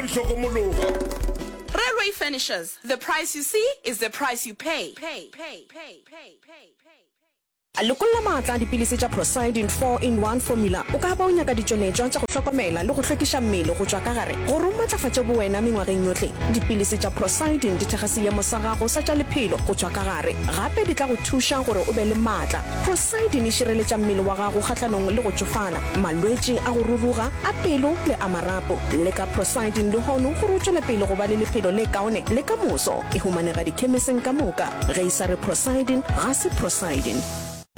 go hlokomologa. Railway Furnishers, the price you see is the price you pay. Lekolla maatla a dipilisi tša Procyldin Four In One Formula O ka ba o nyaka ditšweletšwa tša go hlokomela le go hlwekiša mmele go tšwa ka gare gore o matlafatše bowena mengwageng yohle. Dipilisi tša Procyldin di thekga seemo sa gago sa tša lephelo go tšwa ka gare. Gape di tla go thuša gore o be le maatla. Procyldin e šireletša mmele wa gago kgahlanong le go tšofala. malwetši a go ruruga a pelo le a marapo, le ka prosiding lehono gore o tšwele pele go ba le lephelo le kaone le ka moso. E humanega dikhemeseng ka moka. Ge e sa re prosiding, ga se prosiding.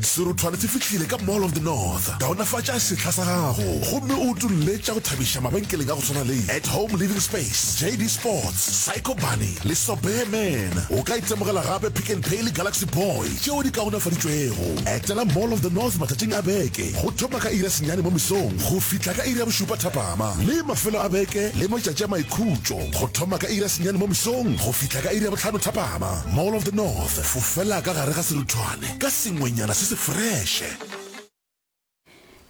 Serothwane se fihlile ka Mall of the North. Kaonafatša sehla sa gago gomme o utolle tša go thabiša mabenkeleng a go swana le At Home Living Space, JD Sports, Psycho Bunny le Sobearman. O ka itemogela gape Pick n Pay le Galaxy Boy. tšeo di kaonafaditšwego. Etela Mall of the North matšatšing a beke, go thoma ka iri ya senyane mo mesong go fihla ka iri ya bošupa thapama, le mafelo a beke le matšatši a maikhutšo, go thoma ka iri ya senyane mo mesong go fihla ka iri ya bohlano thapama. Mall of the North, fofela ka gare ga seruthwane ka sengwenyana se se freše.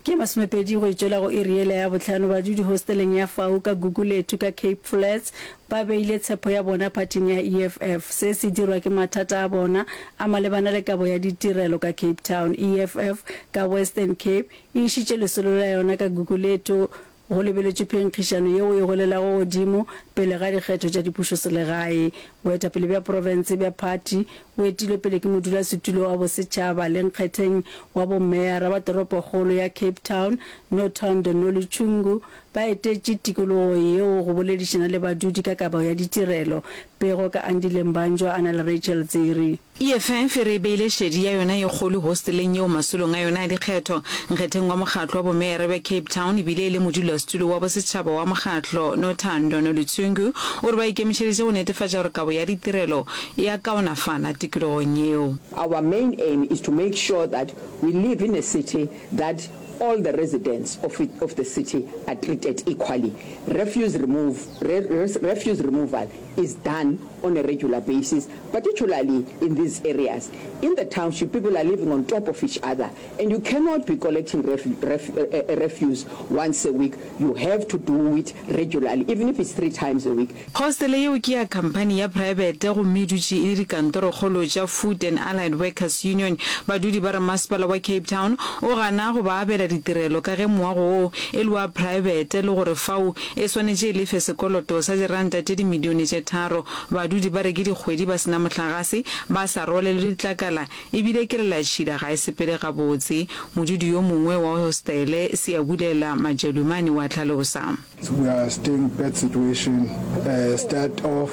Ke masomepedi go e tšwela go iri yela ya bohlano badudi hosteleng ya fau ka Gugulethu ka Cape Flats ba beile tshepo ya bona phathing ya EFF. Se se dirwa ke mathata a bona a malebana le kabo ya ditirelo ka Cape Town. EFF ka Western Cape e išitše lesolo la yona ka Gugulethu Go lebeletšwe phenkgišano yeo e golelago godimo pele ga dikgetho tša dipušoselegae. Boetapele bja profense bja phathi bo etilwe pele ke modulasetulo wa bosetšhaba le nkgetheng wa bomeyara wa toropokgolo ya Cape Town, Nothando Noluchungu, ba etetše tikologo yeo go boledišana le badudi ka kabo ya ditirelo. Pego ka Andile Mbanjwa a na le Rachel Dziri. EFF e re e beile šedi ya yona ye kgolo hosteleng yeo masolong a yona a dikgetho, nkgetheng wa mokgatlo wa bomeyara bja Cape Town e bile e le modulasetulo wa bosetšhaba wa mokgatlo, Nothando Noluthungu, o re ba ikemišeditše go netefatša gore kabo ya ditirelo e a kaonafala tikologong yeo. Our main aim is to make sure that we live in a city that all the residents of of the city are treated equally. Refuse remove, re, re, refuse removal is done on a regular basis particularly in these areas in the township people are living on top of each other and you cannot be collecting refuse once a week you have to do it regularly even if it's three times a week. Hostele yeo ke ya khamphani ya praebete gomme e dutše e le dikantorokgolo tša Food and Allied Workers Union. Badudi ba re masepala wa Cape Town o gana go ba abela ditirelo ka ge moago woo e le wa praebete le gore fao e swanetše e lefe sekoloto sa diranta tše dimilione tše tharo. Badudi ba re ke dikgwedi ba se na mohlagase, ba sa rwalelwe ditlakala e bile kelelatšhila ga e sepele gabotse, modudi yo mongwe wa hostele Siyabulela Majalumane wa hlalosa. We are still bad situation, start of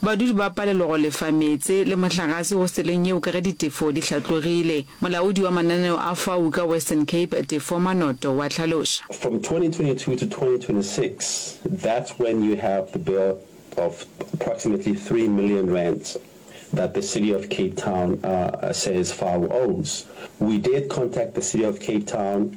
Badudi ba palelwa go lefa meetse le mohlagase hosteleng yeo ka ge ditefo di hlatlogile. Molaodi wa mananeo a fau ka Western Cape, Tefo Manoto, wa hlaloša. From 2022 to 2026, that's when you have the bill of approximately three million rands that the City of Cape Town says fau owes. We did contact the City of Cape Town.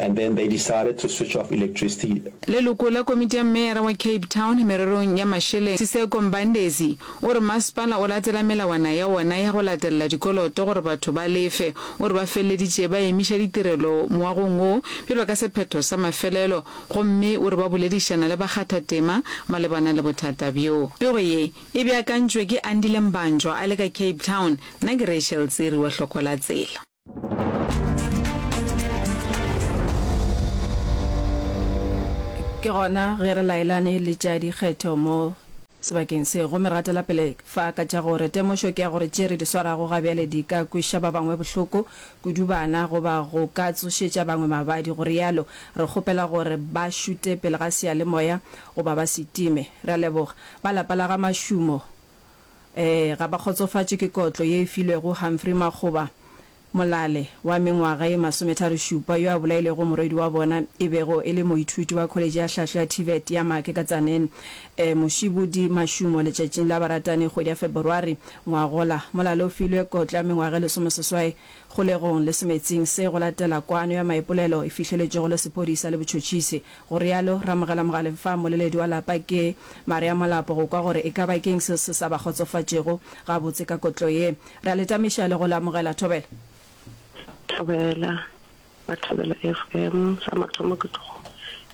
and then they decided to switch off electricity. Leloko la komiti ya meyara wa Cape Town mererong ya mašeleng, Siseko Mbandezi, o re masepala o latela melawana ya wona ya go latelela dikoloto gore batho ba lefe. O re ba feleleditše ba emiša ditirelo moagong wo bjalo ka sephetho sa mafelelo gomme o re ba boledišana le bakgathatema malebana le bothata bjo. Pego ye e beakantšwe ke Andile Mbanjwa a le ka Cape Town, nna ke Rachel Tsiri wa Hlokola Tsela. ke gona ge re laelane le tša dikgetho mo sebakeng se gomme ra tela pele fa ka tša gore temošo ke ya gore tše re di swarago ga bjale di ka kweša ba bangwe bohloko kudu bana goba go ka tsošetša bangwe mabadi go realo re kgopela gore ba šute pele ga seyalemoya goba ba se time re a leboga ba lapa la ga mašumo Ee, ga ba kgotsofatšwe ke kotlo ye e filwego Humphrey Makgoba, molale wa mengwaga ye masometharo-šupa yo a bolailego morwedi wa bona e bego e le moithuti wa kholetše ya hlahlo ya TVET ya Maake ka Tzaneen, Mošibudi Mashumo letšatšing la baratani kgwedi ya Feborwari ngwagola. Molale o filwe kotlo ya mengwaga e lesomeseswai kgolegong le semetsing se go latela kwano ya maipolelo e fihleletšwego le sephodisa le botšhotšhisi. Go realo Rramogela Mogale fa mmoleledi wa lapa ke Maria Molapo go kwa gore e ka ba ke'ng seo se sa ba kgotsofatšego gabotse ka kotlo ye. Re a le tamiša le go le amogela. Thobela. Thobela, ba Thobela FM. Sa mathomo ke tlo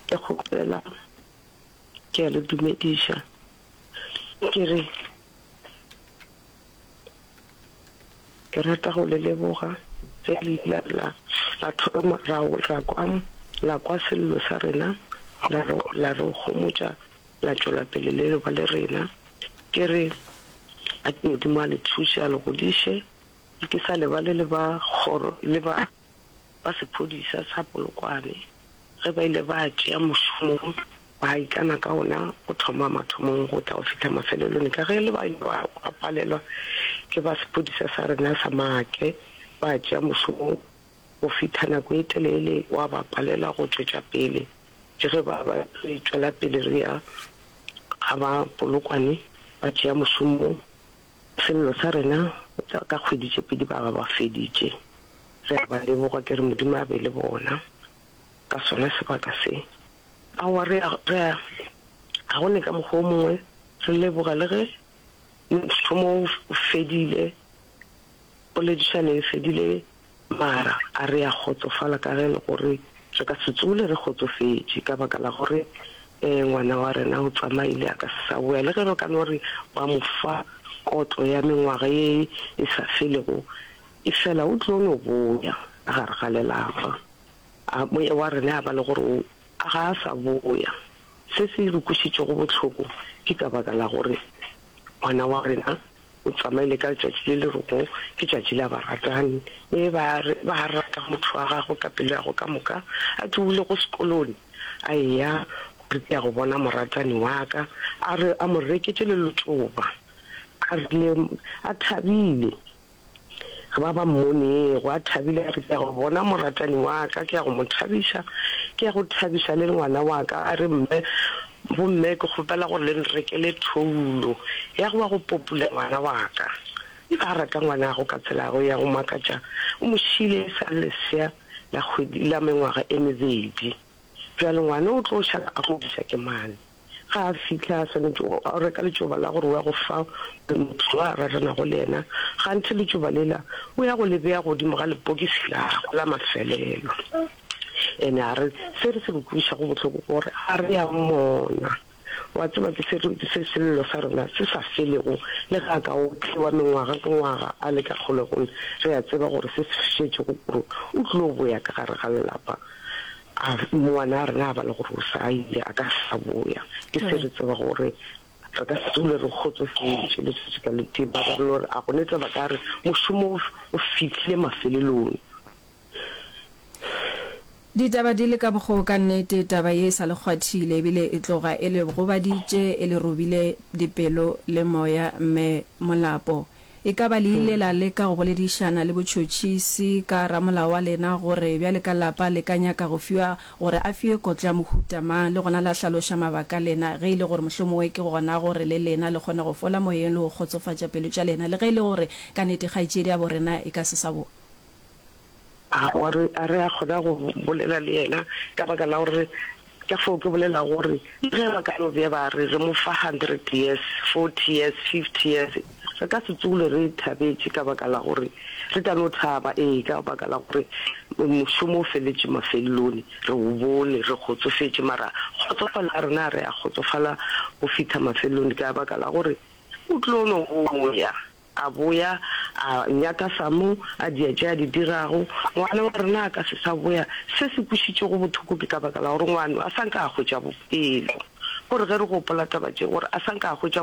ke kgopela ke a le dumediša ke re, Ke rata go le leboga ge le ile la la thoma ra ra kwa la kwa sello sa rena la re la re gomotša la tšwela pele le leba le rena. Ke re a ke Modimo a le thuše a le godiše ke sa lebale le ba kgoro le ba ba sephodisa sa Polokwane ge ba ile ba tšea mošomo ba ikana ka ona go thoma mathomong go tla go fihla mafelelong ka ge le ba ile ba palelwa ke ba sephodisa sa rena sa Maake ba tšea mošomo go fihla nako e telele wa ba palelwa go tšwetša pele ke ge ba ba re tšwela pele re ya ga ba Polokwane ba tšea mošomo Sello sa rena sa ka kgwedi tše pedi ba ba ba feditše. Ge re ba leboga ke re Modimo a be le bona ka sona sebaka se. Aowa re a, re a, ga go ne ka mokgwa o mongwe re leboga le ge mothomo o fedile, poledišano e fedile Mara a re a kgotsofala ka ge e le gore re ka se tsoole re kgotsofetše ka baka la gore ngwana wa rena o tsamaile a ka se sa boya. Le ge ba ka no re ba mo fa kotlo ya mengwaga ye e sa felego, efela o tlo no boya ka gare ga lelapa. A moya wa rena ya ba le gore ga a sa boya, se se re kwešišitšego bohloko ke ka baka la gore ngwana wa rena O tsamaile ka letšatši le le rego ke tšatši la baratani. Ee, ba re, ba rata motho wa gagwe ka pelo ya gagwe ka moka. A ke o ile go sekolone? A eya, gore ke ya go bona moratani wa ka. A re, a mo reketše le letšoba. A rile, a thabile. Ge ba ba mmonego a thabile, a re, Ke ya go bona moratani wa ka, ke ya go mo thabiša, ke ya go thabiša le ngwana wa ka. A re, Mme, bomme, ke kgopela gore le nrekele thoulo ya go wa go popula ngwana wa ka. E be a rata ngwanagwe ka tselago ya go makatša. O mo šiile e sa le lesea la kgwedi, la mengwaga e mebedi. Bjale ngwana o tlo šala a go bitša ke mang? Ga a fihla, a swanetše go reka letšoba la gore o ya go fa motho yo a raranago le yena. Gantši letšoba lela o ya go le bea godimo ga lepokisi la gagwe la mafelelo. Ene a re se re se re kwešišago bohloko ke gore ga re a mmona. Wa tseba, ke se re se Sello sa rena se sa felego. Le ge a ka otliwa mengwaga ke ngwaga a le ka kgolegong, re a tseba gore se se šetšego kuro o tlilo boya ka gare ga lelapa. A ngwana a rena a ba le gore o sa ile a ka sa boya, ke se re tseba gore re ka se dule re kgotsofetše letšatši ka le tee. Ba ba relo gore a go ne tseba ka re mošomo o fihlile mafelelong. Ditaba di le ka bokgo ka nnete, taba ye e sa le kgwathile ebile e tloga e le gobaditše, e le robile dipelo le moya. Mme Molapo E ka ba le ile la leka go boledišana le botšhotšhisi ka ramolao wa lena gore bjale ka lapa le ka nyaka go fiwa gore a fiwe kotlo ya mohuta mang le gona la hlaloša mabaka a lena ge e le gore mohlomongwe ke gona gore le lena le kgone go fola moyeng le go kgotsofatša pelo tša lena le ge e le gore ka nnete kgaetšediabo rena e ka se sa bo A gore a re a kgona go bolela le yena ka baka la gore ka foo ke bolela gore le ge ba ka no be ba re re mo fa hundred years, forty years, fifty years re ka se tsogole re thabetše ka baka la gore re ka no thaba ee ka baka la gore mošomo o feletše mafelelone re o bone re kgotsofetše mara kgotsofalo ya rena a re a kgotsofala go fitha mafelelone ka baka la gore o tlo no boya. A boya, a nyaka sa mo a dia tše a di dirago. Ngwana wa rena a ka se sa boya. Se se kwešitšego bothoko ke ka baka la gore ngwano a sa nka a hwetša bopelo. Gore ge re gopola taba tše, gore a sa nka a hwetša